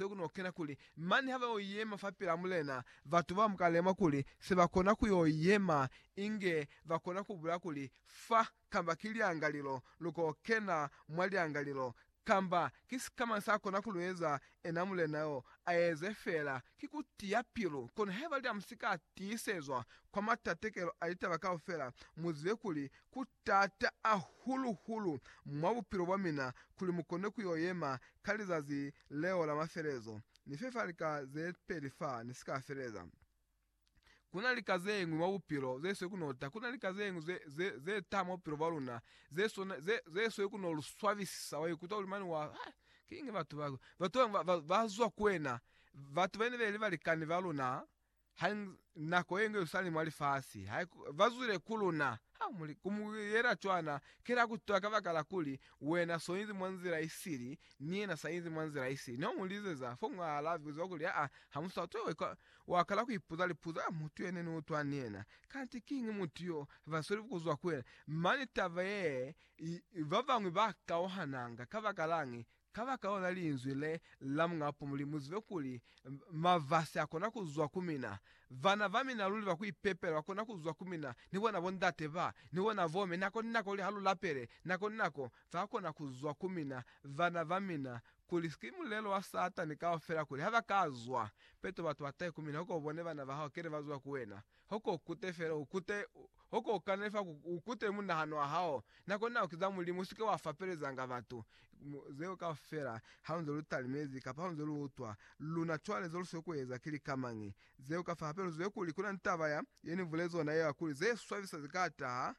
Be ku n'o kena kuli, mane ha ba y'o yema fapil'a Mulena, batu ba muka lemwa kuli se ba kona ku y'o yema, inge ba kona ku bulaya kuli, Fa kamba ki lyangalilo, lu k'o kena mwa lyangalilo, kamba, Ki sikamañi sa kona ku lu eza? Ena Mulena y'o, a eze fela. Ki ku tiya pilu. Kono haiba lya mu si ka tiisezwa kwa matatekelo a litaba kaufela, mu zibe kuli ku Taata a hulu hulu mwa bupilo bwa mina kuli mu kone ku yo yema ka lizazi leo la mafelezo. Ni fe fa lika ze peli fa ni si ka feleza. Ku na lika ze ñwi mwa bupilo ze swe ku no ta. Ku na lika ze ñwi ze, ze taha mwa bupilo bwa luna ze sona, ze, ze swe ku no lu swabisisa. Wa ikuta kuli mane wa, Hai, kiñi batu ba, batu ba, ba, ba zwa ku wena, batu ba ne be li balikani ba luna, Ha i nako ye nge usali mwa lifasi, ha i vazwile ku luna. Ha mu li, Ku mu yela cwana, ki la ku twa kabakala kuli wena so inzi mwa nzila i sili, ni yena sa inzi mwa nzila i sili. Ne mu lizeza fo mwa alabi zwa kuli, Aa, ha mu sa twe. Wa ka, wa kala ku ipuza lipuzo, Aa, mutu ye ne ni utwa ni yena, kanti kiñi mutu yo ba sweli ku zwa ku yena? Mane taba ye, i, ba bañwi ba kauhananga. Kabakalañi? Kabakalaona linzwi le la Muñ'a Pumuli, muzibe kuli mavasi akona kuzwa ku mina. Vana va mina luli ba kuipepela bakona kuzwa ku mina, ni bona bo ndate ba, ni bona bo me, nako ni nako kuli ha lu lapele, nako ni nako ba kona kuzwa ku mina, vana ba mina, kuli ki mulelo wa Satani kaufela kuli ha ba ka zwa peto batu ba tahe ku mina, koko bone bana ba hao kele ba zwa ku wena. Hoko ukute fela, ukute, hoko ukane fa ku, ukute munahano wa hao, nako nako kiza Mulimu, usike wa fapelezanga batu, mu, zeo kaufela, haunze lu talimezi, kapa haunze lu utwa, luna cwale ze lusweli kueza ki lika mañi, zeo kafa, hape luzwile kuli kuna ni taba ya, ye Ni bulezi ona yeo ya kuli, ze swabisa ze ka taha,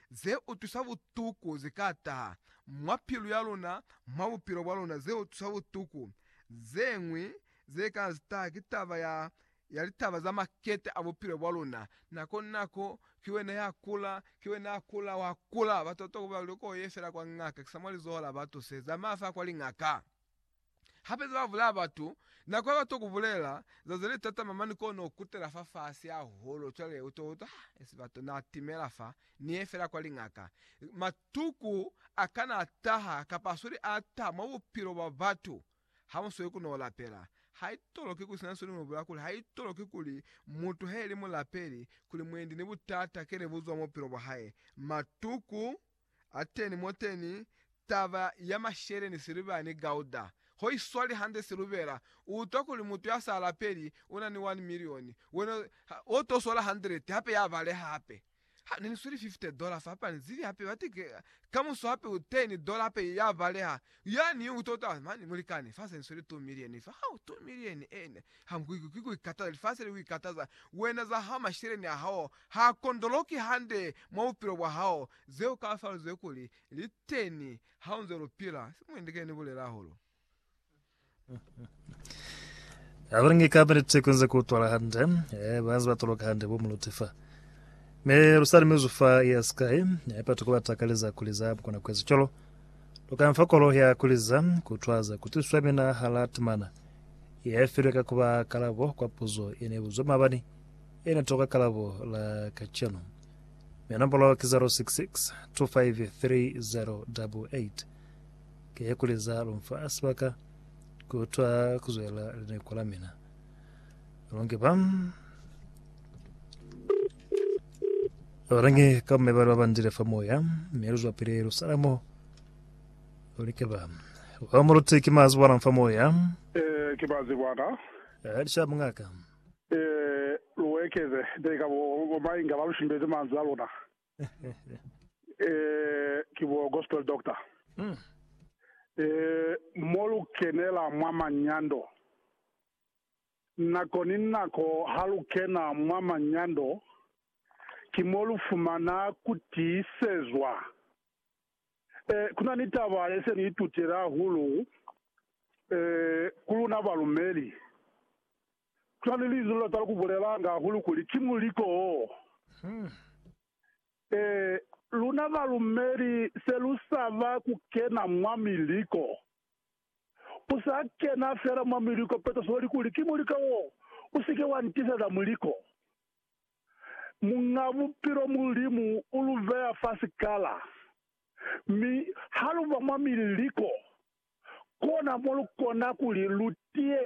ze utusa butuku ze ka taha mwa pilu ya luna mwa bupilo bwa luna, ze utusa butuku. Ze ñwi ze ka taha ki taba ya, ya litaba za makete a bupilo bwa luna. Nako ni nako, ki wena ya kula, ki wena ya kula, wa kula. Batokotoko ba li, Loko u ye fela kwa ngaka, ki sa mwa lizoho la batu se, zamaya fela kwa lingaka. Hape za bavulaya batu, nako ya bato kubulela za zeli tatama mani kono kutela fa fasi hahulu cwale uto utwa ha esi bato na timela fa ni ye fela kwa lingaka. Matuku akana ataha kapa asweli ata mwa bupilo bwa batu ha musweli kuno lapela. Haitoloki kuli sina nsweli nobula kuli haitoloki kuli mutu haeli mulapeli kuli mwendi ni butata kele buzwa mubupilo bwa hae. Matuku. Ateni moteni taba ya mashele ni siliva ni gauda ho i swali hande siluvela. U utwa kuli mutu ya sa lapeli u na ni wani milioni, wena u to swala handireti hape ya baleha hape. Ha ne ni sweli fifte dola fa hape a ni zibi hape bati ke, kamuso hape u teni dola hape ya baleha. Yani u utwa kutwa, mani, mulikani, fa se ni sweli tu milioni fa. Hau, tu milioni, eena, ha ku ikataza, lifasi li ku ikataza, wena za hao, mashele ni a hao, Ha kondoloki hande mwa bupilo bwa hao zeo ka sa luzwe kuli li teni ha u nze lu pila. Simuindi ke ni bulela hahulu. Ha lu ngi kapa niti ku nze ku utwala hande, eh, ba nze ba toloka hande bo muluti fa. Mi lu sa limizwi fa ya sikai, eh, batu ku ba takaleza kuli za mu kona kueza cwalo. Lu ka nfa kolo ya kuli za ku utwaza ku tiswa mina hala timana ye filwe ka ku ba kalabo kwa puzo ye ne buzwa mabani. Ena toka kalabo la kacenu. Mi nombolo ki 0662530088. Ke kuli za lunfa sibaka ku utwa kuzwela lineko la mina. Lungi ba. Orange ka mme bari babandile fa moya mme lu zwapile lu sala mo olike ba wa muluti ki mazi bona fa moya Eh, ke bazi bwana. a lisha mungaka lu ekeze teli ka bo mai inga ba lu shimbezi manzwi a luna. Ki bo gospel doctor. Mo lu kenela mwa manyando. Nako ni nako ha lu kena mwa manyando, ki mo lu fumana ku tiisezwa. Eh, ku na ni taba ye se ni itutile hahulu, eh, ku luna balumeli. Ku na ni linzwi le lu tala ku bulelanga hahulu kuli, ki muliko wo. Eh, luna balumeli se lu saba ku kena mwa miliko. U sa kena fela mwa miliko peto soli kuli, Ki muliko wo! U si ke wa ntiiseza muliko. Muñ'a Bupilo Mulimu u lu beya fa sikala, mi ha lu ba mwa mililiko, kona mo lu kona kuli lu tiye